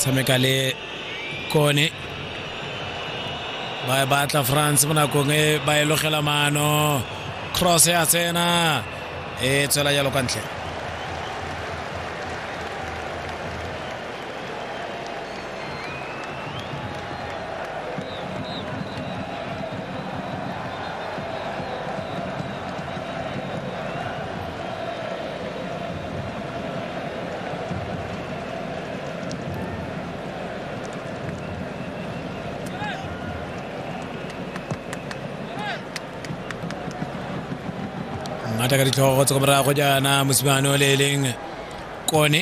tshameka le kone ba e batla france mo nakong e ba e logela maano cross ya tsena e tswela jalo kwa ntle ngata ka ditlhogo tsa morago jaana mosimane o le e leng kone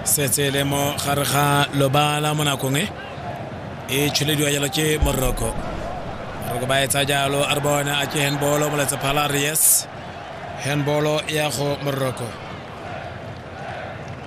setse e le mo gare ga lobala mo nakong e e tšhelediwa jalo ke moroko moroko ba etsa jalo a re bona a ke handbolo moletsa phala re yes handbolo ya go moroko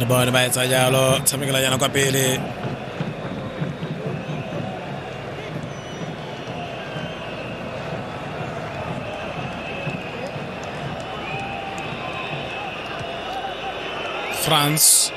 re bone ba etsa jalo tshamekela jana kwa pele france